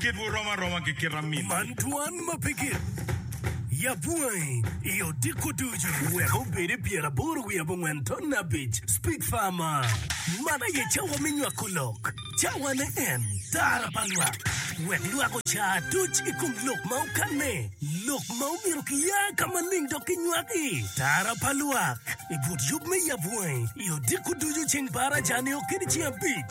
Kitwu rom aroma ki kit amin. Man twan ma pe gin. Yab wangi i odiko ducu. Wek obedi pyer aboro wiye abongwen ton abic. Speak far ma. Man aye cawa me nywako lok. Cawa ne en tara pa lwak. Wek lwak ocar duc i kom lok ma okanne. Lok ma omyero kiya ka maling dok kinywak i. Tara pa lwak. I but yub me yab wangi i odiko ducu ceng par acar nio kede ceng abic.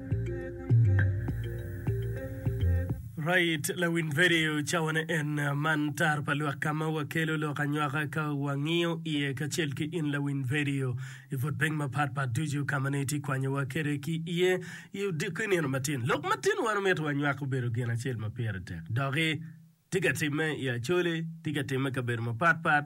Right, lawin vedio cawane en man tar pa lwak ka ma wakelo lok anywaka ka wangiyo iye kacel ki in lawin vedio i put piny mapat pat ducu ka ma nongo itye kwanyowa kede ki iye i odiko inino matin. Lok matin wan omito wanywak obedo gin acel ma pire tek doki tye ka timme i Acholi, tye ka timme i kabedo mapat pat,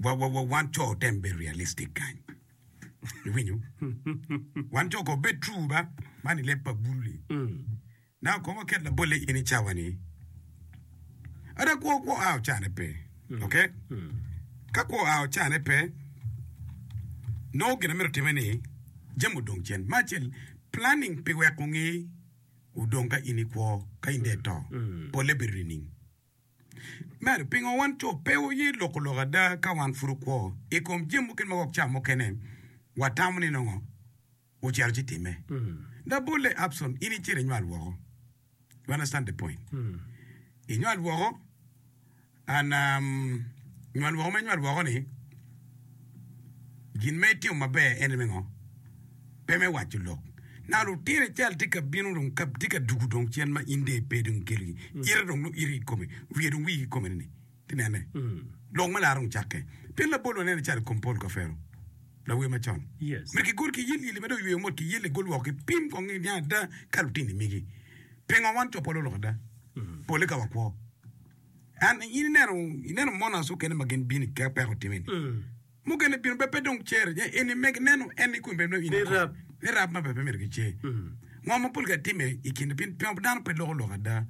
wa wa wa wan co otem bedo realistic kany. Iwinyo? Wan co ko bed true ba man i leb pa bulu ni. Na kong oket labolle in i cawa ni ada kwo kwo a ocane pe. Okay? Ka kwo a ocane pe nongo gin amito time ni jam odong cen. Ma acel planning pi weko ngi odong ka in i kwo ka in de ito. Polle bedo nining? Medo, pingo wan co pe waye loko lok ada ka wan pud okwo i kom jami mukene ma wek ca mukene watamo ni nongo ocito ci timme? Da bolle Abson in icito inywal woko. You understand the point? Inywal woko and um, nywal woko ma inywal woko ni gin ma itimo maber en me ngo? pe me waco lok. Na lutino ical tye ka bino dong ka tye ka dugu dong cen ma in dong ipe dong ikelo gi ite dong nongo ite ikome wiye dong wii ikome ni ti nene lok me lar dong cakke pien labol wanene calo i kom Paul Kafero lawer macon myero ki gol ki yelyeli ma dong oyweyo mot ki yelle gol woko ki pim kong ni niang ada ka lutino imigi pingo wan co pole oloko ada pole ka wakwo and in ineno ineno monas okene ma gin bini ka peko time ni. mukene bino bed pe dong cer nye en ni meg neno en ni kun bed neno in ikor ni rab ma pe myero gicer. Ngo ma pol ga timme i kine pin pingo dano pe loko lok ada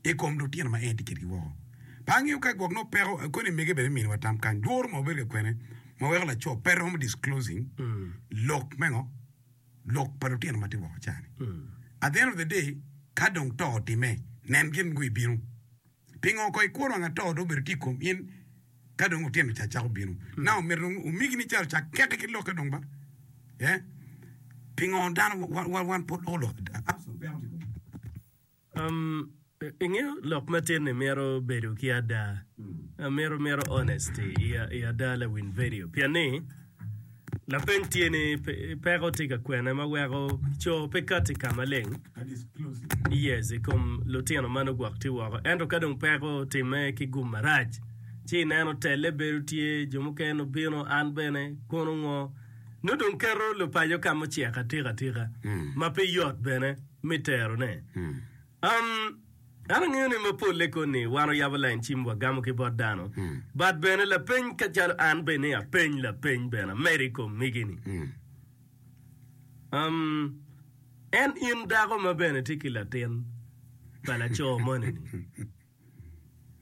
i kom lutino ma en tye kedgi woko? Pe angeyo ka gwok nongo peko akoni i mege bene i miniwa tam kany lworo ma wabedo ka kwene ma weko laco pe romo disclosing lok me ngo lok pa lutino ma tye woko cani at the end of the day ka dong to otimme nen gin ngo ibino Pingo oko i kwo wang atoo dong obedo tye i kom in ka dong otyeno ca cako bino? Nanga omyero dong omigi ni caro cak keke ki lokke dong ba? Ee, pingo dano wa wan pud loko lok ada? Ingeyo lok matin-ni mito bedo ki ada, mito mito honesty i ada lawiny vedio pien ni Lapeny tye ni, Peko tye ka kwene ma weko co pe kato i ka maleng i kom lutino ma nugwok tye woko? Ento ka dong peko otimme ki gum marac, ci ineno telle bedo tye, jo mukene nongo bino, an bene, kono ngo? Nongo dong keto lupaco ka mucek atika atika ma pe yot bene me terone. Um, an angeyo ni ma polle koni wan oyabo lain cim wagamo ki bot dano, but bene lapeny ka calo an bene apeny lapeny bene amedo i kom migi-ni. Um, en in dako ma bene tye ki latin pa laco moni-ni?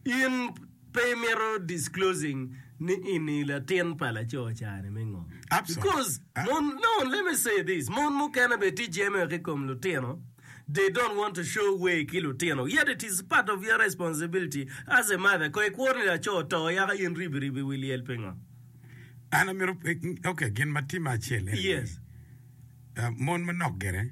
In pe imito disclosing ni ini latin pa laco cani me ngo? Because mon, no, let me say this, mon mukene be ti jeme ki kom lutino, they don't want to show way ki lutino, yet it is part of your responsibility as a mother, ko ikwo ni laco to yaka in ribi ribi wi lyel pingo? An amito, okay, gin ma timme acel ene ni, Yes. ah, mon manok gire,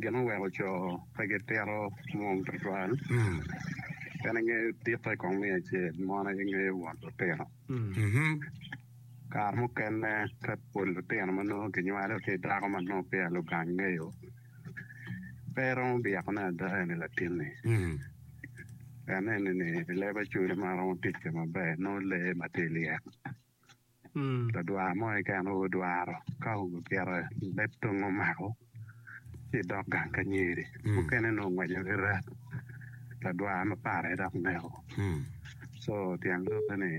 gin ma weko co pe gitito mwom tutwal en aye dikke kong me acel mon aye ngeyo won lutino. Kare mukene ka pol lutino ma nongo kinywalo ki i dako ma nongo peya lugang ngeyo pe romo byekone ada eni latinni pien eni ni leb acwele ma romo ticce maber nongo lee ma tye lyet. ladwar mo keken aye odwaro ka obyelo leb tongo omako ci dok gang ka nyeri mukene nongo ongweco ki rek ladwar ma para aye dok neko so tyen lobbe ni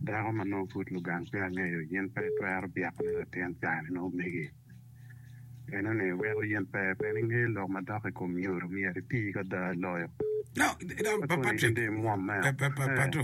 dako ma nongo pud lugang pe angeyo in pe itwero byeko ni latin cani nongo megi meno ni weko in pe pien ingeyo lok ma dok i kom nyodo myero iti ki ada loyo No, no, no, Patrick. Pato.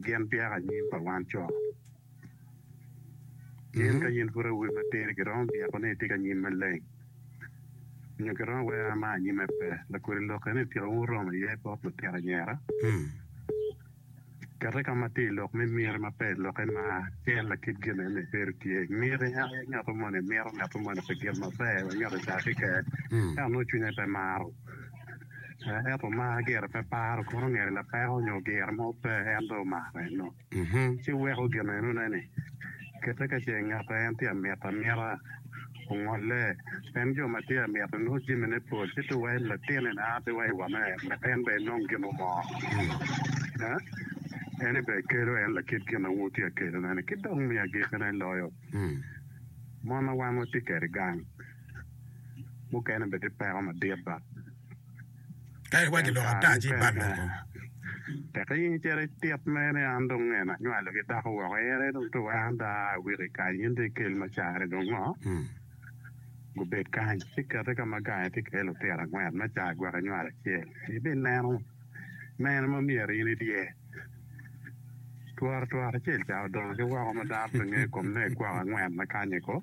Gin byek anyim pa wan co. In ka in pud awobi matir, giromo byeko ni itye ki anyim maleng, nyo giromo wero ma anyimme pe. Lakodi lokke ni tika wun wuromo iye bot lutino anyira? Kete ka ma tye i lok me miti ma pe i lokke ma en lakit gin en aye bedo tye. Miti en aye ngat moni mito ngat moni pi gin maber, ngat adakke keken, ento nongo cwinye pe maro. ento mar gire pe paro kono ngeto lapeko nyo gire mo pe en dong omako eno ci weko gin enone ni kite ka ce ngat ma en tye ka mito amita ongole pien jo ma tye ka mito nongo jamine pol ci tung wa i latinne na a tung wa i wame myero en bene enong gin mo mo en bene kelo en lakit gin ma wun wutye ka kelone ni ki dong me agikki ne loyo mon ma wan watye kede gang. mukene bene tye peko madit ba. Ka iwaco Pien lok kare ata ci mukene ibal lok kong. tek i nge cere itit mere ni an dong nge na nywalo ki dako woko ere dong to weko an pe aa i wiki kany in dong ikel ma cari dong ngo? Gubed kany ci kete ka ma gange tye kee lutiro angwen me caa gwok inywalo acel ibineno mene ma myero in idiye. Tworo tworo acel caa odongo ki woko ma dano pe nge kom ne gwok angwen ma kanye ko.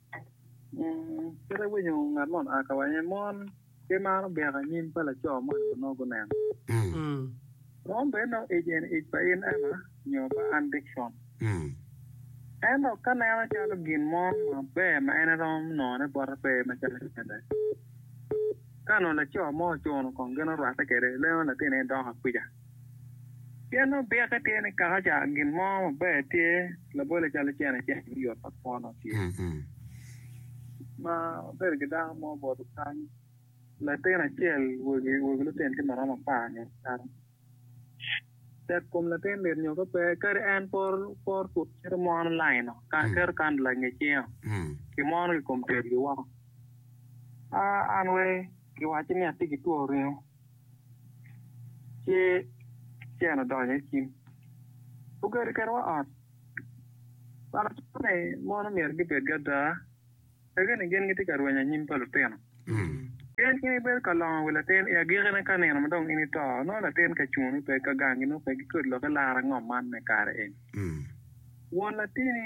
Kit awinyo ngat man oa ka wang aye mon pe maro byeko anyim pa laco mo onyo onongo guneno. Mon bene nongo ic en ic pa in Emma nyo pa an Dickson. Ento ka neno calo gin mo maber ma en eromo nongone bote pe macalo cente. Ka onongo laco mo ocuno kong gin orwate kwede leno latinne dongo akuca. Cen obyeke tye ni kaka ca gin mo maber tye labole calo cene ceng me yot ma kwono tye ma bedo ki dako mo oboto kany latin acel wegi wegi lutino tye maromo apar nyo kany tek kom latin mit nyo ka pe kadi en poro poro pud cito mwono laino kan keto kandla inge cingo ki mwono ki kom tel gi woko an wai kiwacci ni atye ki two ringo Ci Cen odonyo i cim, ogedo kedwa ot. Wan ociko ni mon omyero gibed ki ada, wek ni gin gitye ka rwenyo anyim pa lutino. Pien in ibedo ka longo wi latin i agikine ka nino ma dong in ito, nongo latin ka cungo pe, ka gangi nongo pe, gikodi lok ilaro angom man me kare eni, won latini.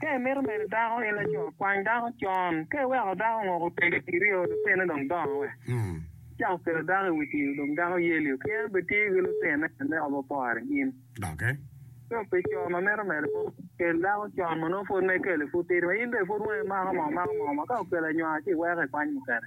Ka imito medo dako in laco, kwany dako con. Ka iweko dako ongoko tegi kiri o, lutine dong dongo wek icak kelo dako i wi tim dong dako yeli o ki en bene tye ki lutine me obo pore ki in. Ka obedo co ma mito medo kwo, kel dako con ma nongo pud ma ikelo ni pud tidi ma in bene pud wangi mako mo mako mo ma ka okelo anywaka ci iweko ikwany mukene.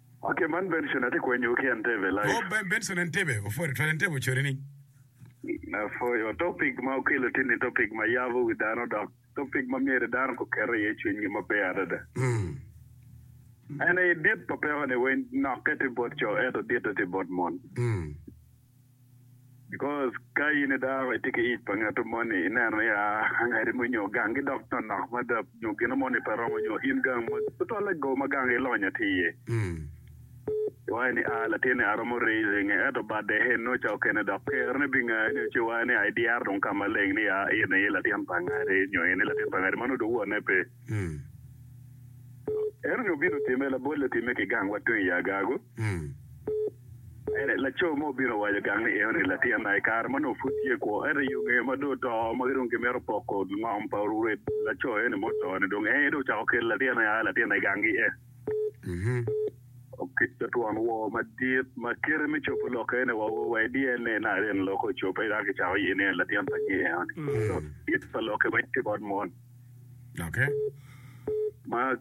Ok man Benson atye kwenyo ki Entebbe live. Oh ben Benson Entebbe opwod tutwal Entebbe ocori ni. Apwoyo topic ma okelo tye ni topic ma yabo wi dano dok topic ma myero dano ko ket iye cwiny gi maber adada. En aye dit pa peko ni weng nokke tye bot co ento ditte tye bot mon. Because ka in i dako itye ki ic pa ngatto moni ineno ya angadi mo nyo gangi dok nonok mada nyo gino moni pe romo nyo in gang mo tutwalle go ma gang ilonyo tye iye. Iwaco ni ah latin ni aromo raising e ento bade he no ca okene dok ker ne binga nyo ci iwaco ni ah idyero dong ka maleng ni ah in aye latin pa angadi nyo in aye latin pa angadi mano dong wonne pe. Eno nyo bino time labolle time ki gang wa tung i agagu. Ento laco mo obino owaco gang ni Henry, latinna, i kare ma nongo pud tye i kwo, ento i ongeye ma dong oto ma ki dong kimito poko ngom pa orwed laco eni ma oto-ni, dong en aye dong ocako kelo latinna i aa latinna i gang gi-e. Oketto twon woo madit ma kite me cobo lok eni wa o wa i DNA naka en lok ocobbe eka kicako ye ni en latin pa nyi Henry. Kit pa lokke ma tye bot mon ma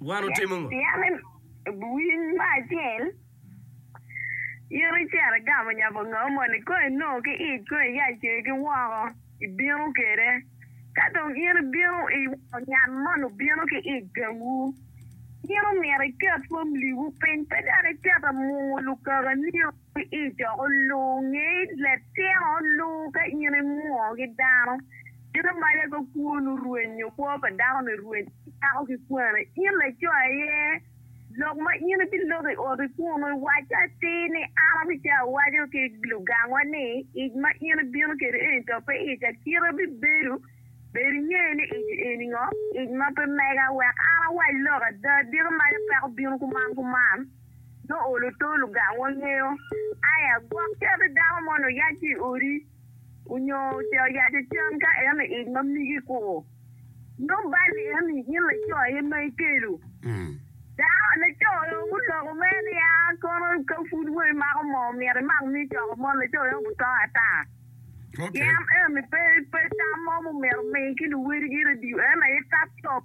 Wan otimo ngo? Pien winy mo acel in icito igamo nyabo ngau moni, kong inongo ki ic, kong iya icer ki woko, ibino kwede. Ka dong in ibino iweko nyam moni obino ki ic gangu, in omyero iket romliwu piny, pe dok iketo mungu lukakaniu. Ki i coko luu, nge latyeno luu ka in imwoo ki dano, in imaca ka kwon orweny nyo kwo pa dano-ni orweny ki dako ki kwane. In laco aye, lok ma in ibiloko i oti kunnu, iwacce atir ni, 'An abica awaco ki lugangwa ni, Ic ma in ibino kede eni to pe ic akita bibedo. Bed inge ni ic eni ngo, ic ma pe mega, wek an awac lok ada, diki maca peko bino kuman kuman. nongo olo tol ogang wangeyo aya gwok cati dako moni oyac ki i odi onyo ce oyac i cam ka en i ic ma migi koko nongo bal eni in laco aye ma ikelo dako laco guloko mere ni a kono ka pud wa imako moo myero imak mi coko mon laco eno obuto ata pien eni pe pe tam mo ma omyero omi ki luwodigi radio en aye tap cop.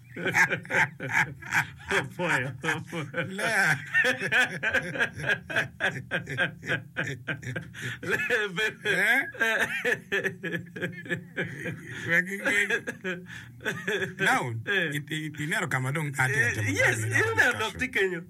Naun, ineno ka ma dong an tye ka timo keni-ni?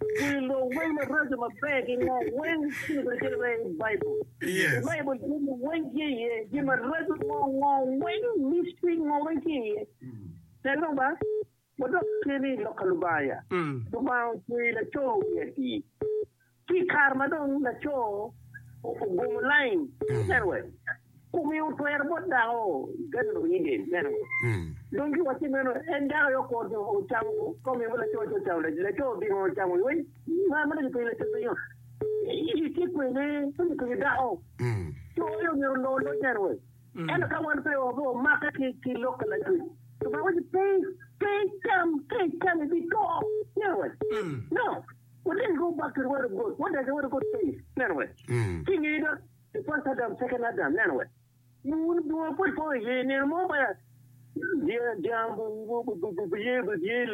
Wi lok weng maraco maber ki ngo weng ci lubedo calo mere i Baibul. I Baibul jami weng tye iye, jami maraco ngo ngo weng, mystery ngo weng tye iye. Nen dong ba, wadok keni i lok ka Lubanga. Lubanga ocweyo laco wi atir. Ci i kare ma dong laco ogomo lain, wuneno wek Kome otwero bot dako Garden of Eden meno. Dong ki wacce meno, en dako aye okor dong ocamo kome ma laco ci ocamo, laco odino ocamo iwe ma ma dong kipenyo laco pingo itye kwe ne dong kipenyo dako co aye omyero olor loc meno we? Ento ka wan pe wape wamake ki ki lok pa Lacwec, Lubanga waco pe pe icam ka icamo ibi to meno we? No, wadengi ki obakki ori wot ogot, wadakke ori wot ogot face meno we? Ci inge dot. The First Adam, Second Adam, neno wek wun bunga pud po iye i nino mo ma dyang biye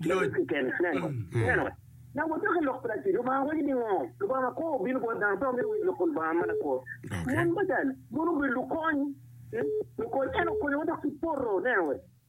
loc keken. Neno wek na wadok i lok pa Lacwe, Lubanga waco ni ngo? Lubanga ma kwo obino bot dano pe omito winyo lok pa Lubanga ma lakwo. Mon bene, mon obedo lukony, lukony, en okonyowa dok kipoto. Neno wek.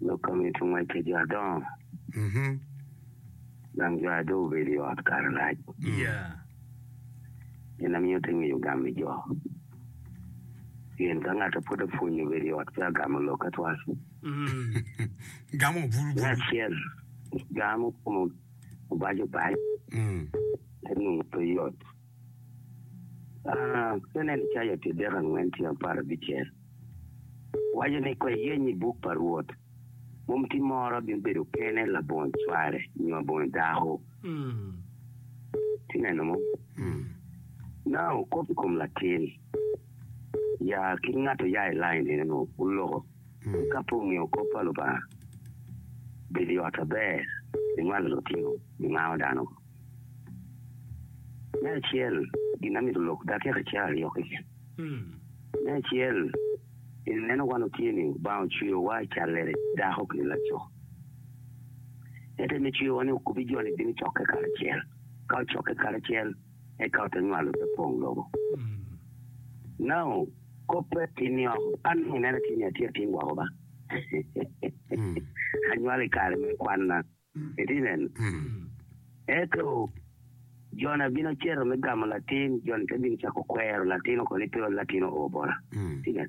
Lok ka mito ngwec pi jo adongo. Gang cware dong obedo i ot kare lac. Gin na miyo te ngeyo gam i jo. Pien ka ngat a pud apwonye obedo i ot pe agamo lok atwal. Me acel, gamo kome obac obac, te nongo pe yot. Penen icayo pi dek angwen tye apar abicel waco ni kwe yeny i buk pa Rwot mom ti moro abino bedo kene labongo cware nyo abongo dako. Ti neno mo? Nao kop i kom latin ya ki ngat oya i lain nino nwo oloko ka pe ongeyo kop pa Lubanga bedo i ot aber ni ngwano lutino ni ngao dano. Me acel, gin amito lok dakika ca aryo keken. Me acel, ineno wan wutye ni Lubanga ocweyowa i callere, dako ki laco. Ento en ocweyowa ni okubbi jo-ni bino cokke karacel. Ka ocokke karacel, eka ote nywalo ote pong lobo. Nao, kobbe tinni oko. An dong inena tye ni atye ating gwoko ba. Anywalo i kare me kwanna. Citizen. Ento Jona bino cito me gamo latin, Jona te bino cako kwero latino ko ni pe ol latino o bota. Citizen.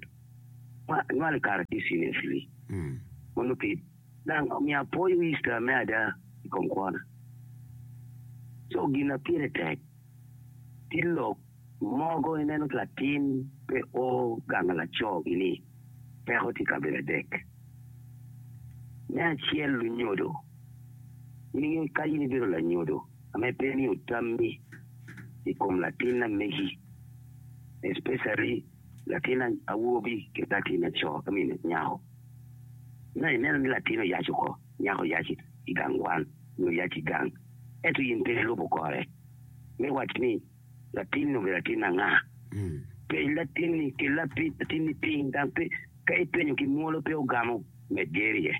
Ma nywal i kare ki cine fili. Mono pi dang omiyo apwoyo Easter me ada i kom kwona. Co gin na pire tek ki lok. Mogo ineno ki latin pe o gang laco gi ni peko tye kabedo adek. Me acel lunyodo, in ingeyo ka in ibedo lanyodo ame pe imiyo tammi i kom latin amegi especially latin awobi ki latin aco I mean nyako ma ineno ni latin oyac oko nyako oyac igang kwan nyo oyac igang eto in pe ilubo kore me wac ni Latin obedo atin anga? Peny latinni ki lapid latinni piny, dang pe ka ipenyo ki mwolo pe ogamo med gerye.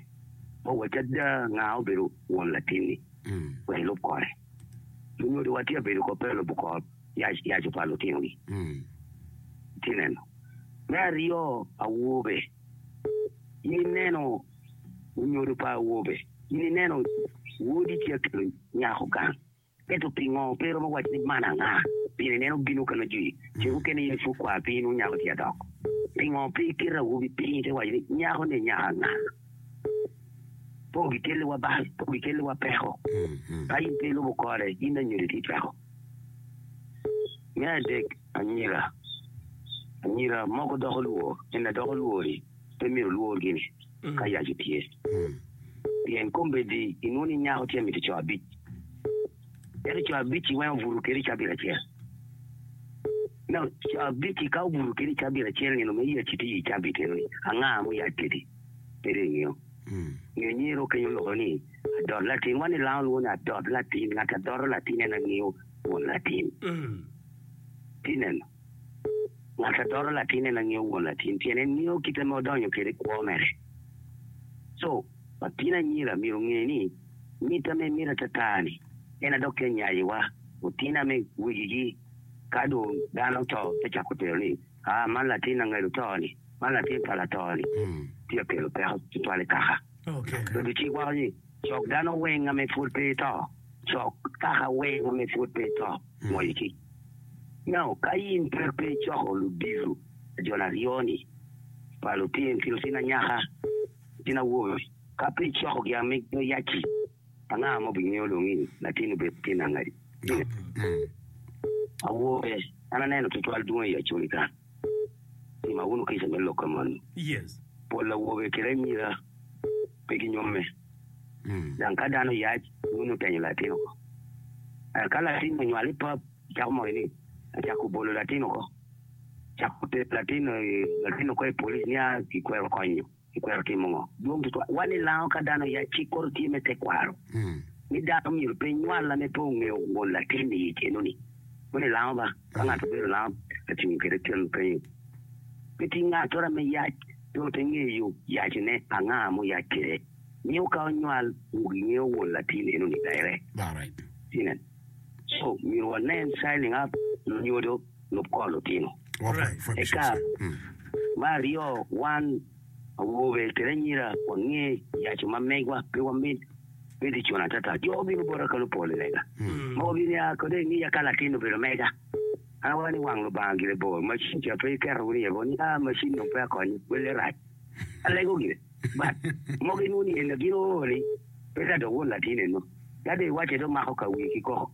Wa wacci ada nga obedo won latinni wek ilub kore. Lunyodo wa tye ka bedo kop pe ka lubo kor yac yaco pa lutinogi. Itye neno? Me aryo awobe, in ineno lunyodo pa awobe, in ineno wodi ci akelo nyako gang. Ento pingo pe iromo waco ni man anga? Pien ineno bino ka nongo jwi ce mukene iye pud kwar piny nwo nyako tye adok. Pingo pe iketo awobi piny te waco ni nyako ni nyako anga? Po gikeli wa bal, po gikeli wa peko. Ka in pe ilubo kore, in anyodo itye cweko. Me adek, anyira. Anyira moko doko lwor, en adoko lwori pe myero olwor gini. ka yac otye. Pien kombeddi inwongo ni nyako tye miti co abic, ento co abic-ci weng obuto kede i cabit acel. No, co abic-ci ka obuto kede i cabit acel nino ma yacci tye i cabit eno-ni, anga ma oyac kwedi? Pede ingeyo. Nyo nyer okenyo oloko ni, Adot latin. Wan i langa olwongo ni adot latin. Ngat a doto latin en angeyo won latin. Tineno? Ngat a toto latinne na ngeyo won latin pien en ngeyo kite ma odonyo kwede i kwo mere. Co, latin anyira myero onge ni mit ame miti atata-ni en aye dok te nyayowa. Otin ame wegigi ka dong dano oto te cako tero ni, aa man latin angedo to-ni, man latin pa lato-ni, tye ka kelo peko tutwal i kaka. Bedo cik wako ni cok dano weng ame pwod pe eto, cok kaka weng ame pwod pe eto. Mony ki Nao ka in pud pe icoko ludito ajol aryo-ni pa lutino anyaka ki lutino awobe, ka pe icokogi amigo yac-ci, anga ma obingeyo dong ni latin-ni obedo tyen angati? Awobe, an aneno twatwal dwongi i yaconi ka. Tima wunu kica me lokke moni, Pol awobe kede anyira pe ginyomme, dang ka dano yac, wun wutenyo latin oko. Ento ka latin-ni onywal i pap, wucako moyo ni, Acako bolo latin oko, acako tero latin-ni oko i polic nia kikwero konyo. Kikwero timo ngo? Dwong tutwal wa ni lango ka dano ya cik kore tye me tekwaro ni dano myero pe nywal la me pe ongeyo won latin i keno ni. Moni lango ba ka ngato obedo lango ka cungo kede kelo penyo pe tye ngatora me yac pe ote ngeyo yaci ne anga mo yac kede nio ka onywal wu gi ngeyo won latin eno ni direct. Inen so myero wa nen signing up nyodo. lub kol otino. Eka me aryo wan awobe kede anyira wange yaco ma megwa pe wamit bedo i cona atata. Jo obino bota kalo pol i lega ma wabinia kode i ngiya ka latin obedo mega. An awaco ni wang Lubanga gire bor, macin ca pe iketo wunu iye bo ni aa macin dong peya konyo, welle rac. Alego gire but mogo inwoni en gin ooo ni pe ka dong won latin eno ka dong iwace dong mako ka wiye ki koko.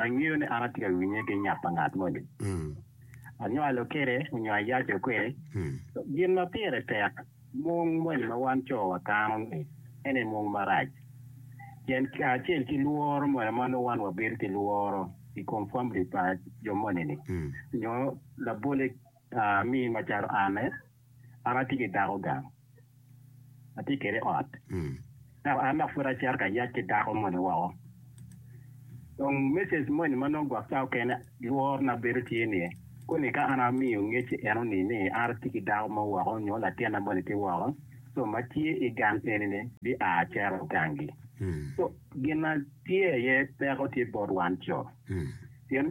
Angeyo ni an atye ka winye ki nyap pa ngat moni. Anywalo kwede nyo ayaco kwede. Gin ma pire tek mung moni ma wan co wakano-ni ene mung marac. Pien kacel ki lworo moni ma nongo wan wabedo ki lworo i kom famili pa jo moni-ni, nyo labolle Aa, mi macalo an, an atye ki dako gang, atye kwede i ot, dok an dok pud acito ka yac ki dako moni woko. Dong mecej moni ma nongo gwok cawa kene lworona bedo tye ni, koni ka an amiyo ngec i eno-ni ni an atye ki dako mo woko nyo latinna moni tye woko, co ma tye i gang eni-ni bia cito gangi. Co, gin ma tye iye peko tye bot wan co, pien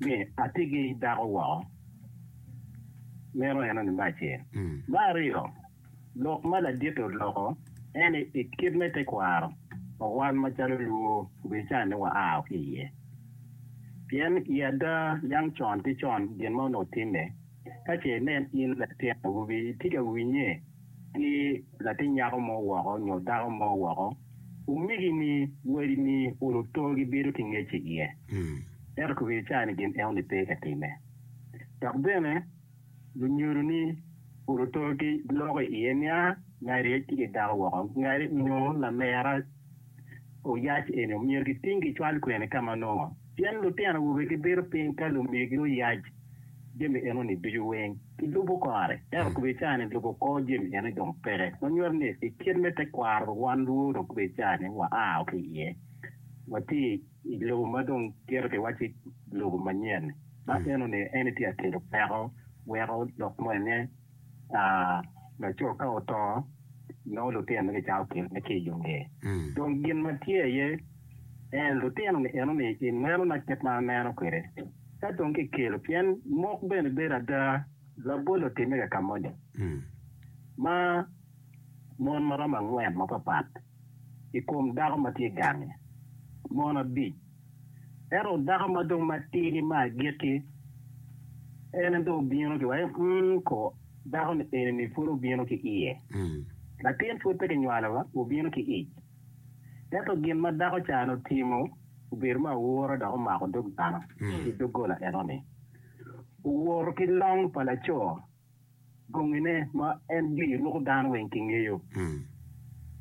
ni atigi dako woko, meno en aye me acel. Me aryo, lok ma laditi oloko en ni i kit me tekwaro pa wan macalo Luo obican ni waa ki iye, pien i ada yang con ki con gin ma onongo timme, Ka ce inen in latin awobi itye ka winye ki latin nyako mo woko nyo dako mo woko, omegini, wadini, oluto gibedo ki ngec i iye. Ento kobedi icar ni gin enoni pe ka timme. Dok bene lunyodoni oluto ki loko i iye nia ngati tye ki dako woko, ngati onyo lamera oyac eni omyero giting gicwal kwene ka ma nongo? Pien lutino awobe gibedo piny ka lumegi oyac. jami enoni ducu weng ki lubo kore, ento kube ica ni lubo kor jami enoni dong peke. Ma nyuto ni i kit me te kwaro dong wan lwor dong kube ica ni wa a o ki iye, wa ti i lobo ma dong gito pi wa ci lobo manyen ni. Ma enoni en ni ti a kelo peko weko lok moni ne. laco ka oto, nongo lutinone gicato pire ma tye i yo ngeye. Mm. Dong gin ma tye iye en lutino-ni enoni i nenona kit ma aneno kwede. Ka dong kikelo, pien mok bene bedo ada labol otimme ka ka moni, Mm. ma mon ma romo angwen mapapat i kom dako ma tye gange, mon abic Ento dako ma dong matir-ri ma agikki, en en dong obino ki wai, mm, ko, dako-ni eni-ni pud obino ki iye. Latin pud pe kinywalo wa, obino ki ic. Ento gin ma dako ca-ni otimo obedo me aura dok omako dog dano ki doggola eno-ni. Owoto ki long pa laco. Bongine ma en giri ruko dano weng kingeyo,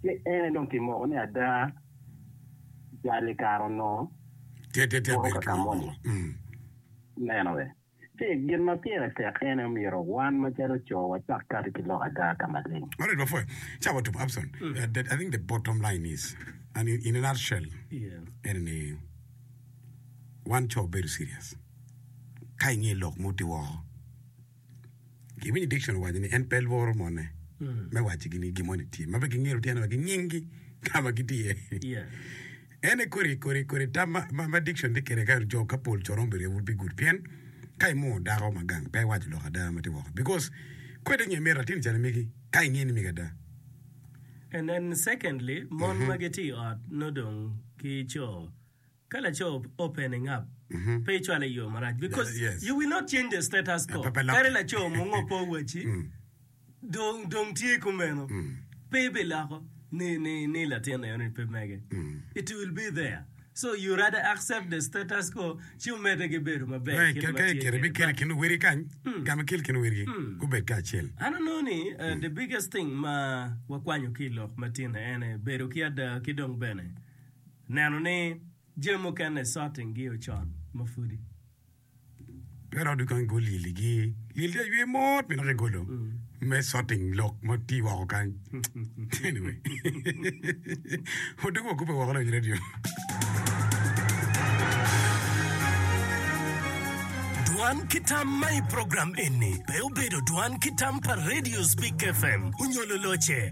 ci en aye dong kimoko ni ada jal i kare onongo woto ka ka moni. Ineno be? Ci gin ma pire tek en aye omyero wan macalo co wacak kati ki lok ada ka maleng. Alright wapwoya. Ca watup Abson. The- I think the bottom line is, and in- in a nutshell, ene ni wan co bedo serious ka ingeyo lok mo ti woko. Iwinyo Dickson owaco ni en pe lworo mone me wacci ni gin mo ni tye. Ma pe gingiro tyen wa ki nyinggi ka ma gitye iye. Yeah. Ene kodi kodi kodi tam ma, ma, ma Dickson tye kede ka jo ka pol coron bedo would be good. Pien ka imoo dako ma gang pe iwaco lok ada ma tye woko. Because kwe ite nge meri latin calo megi ka inge ni megi ada. And then secondly, mon ma gitye i ot nongo dong ki co Ka laco open ingap pe icwale i yoo marac because you will not change the status quo kadi laco mungo pe owaci dong tye kumeno pe ibiloko ni latin eno ni pe mege it will be there so you rather accept the status quo ci omede ki bedo maber kit ma tye kede but I don't know ni the biggest thing ma wakwanyo ki ilok matino ene bedo ki ada ki dong bene. Neno ni jami mukene sot ingi ocon ma pwodi pe rodo kong igol lyel igi. Lyel tye aywe mot me naka igolo me sorting lok ma tye woko kany. Anyway. Odok wa kubbe woko lony radio. Dwan ki tam ma i program eni pe obedo dwan ki tam pa radios Big FM onyo luloce.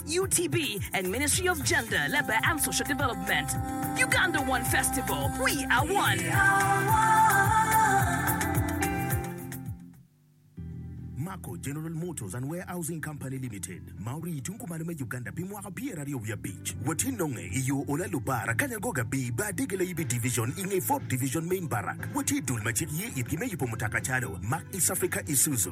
UTB and Ministry of Gender, Labour and Social Development. Uganda One Festival, We Are One. Mako General Motors and Warehousing Company Limited ma orii i tung kumalo me Uganda pi mwaka pyeraryo wiye abic. Watye nonge i yo Olalo Bar, Akanyagoga B, Bar Dege Layibi Division i nge Ford Division Main Barrack. Watye i dul ma cik ye itgi me yubo mutoka calo Mack East Africa Isuzu,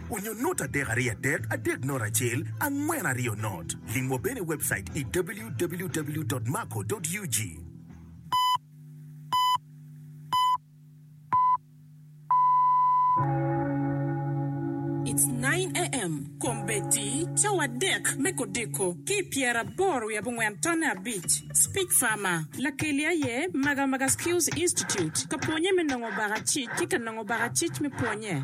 Onyo not adek ariyo adek adek not acel angwen ariyo not. Limwa bene i webcait i www.maco.ug. It's nine AM Kombeddi cawa adek me kodiko ki i pyeraboro wiye abongwen tonne abic Speech Farmer Lakeli aye Magamaga Skills Institute ka pwonye me nongo baka cic ki ka nongo baka cic me pwonye.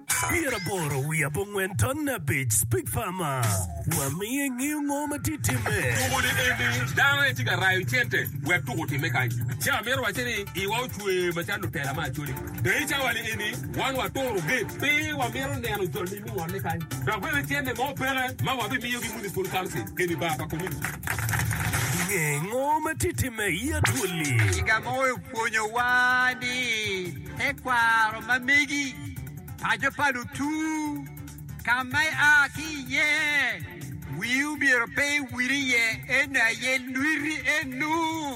Pyeraboro wiye abongwen ton abic Speak Farmer wamiyo ingeyo ngo ma tye timme. Tuko ni eni dano aye tye ka rayo cente wek tuko otimme kany. Ci amito wacce ni iwa ocwe macalo lutela me Acholi. Dei cawa ni eni wan waturo gate pe wamito neno jol ni mungole kany. Dok bene cente mo peke ma wabimiyo gi Municipal Council keni bar pa community. Inge ngo ma tye timme i Acholi? Piga mo oyo pwonyo wa ni Tekwaro ma megi, paco pa lutur, ka ma ia ki iye, wii omyero pe iwil iye, en aye lwiti eno.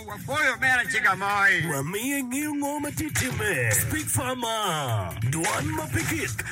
Wapwoyo omera Ciga Moi. Wamiye ngeyo ngo ma tye timme. Speak Farmer, dwan ma pe kik.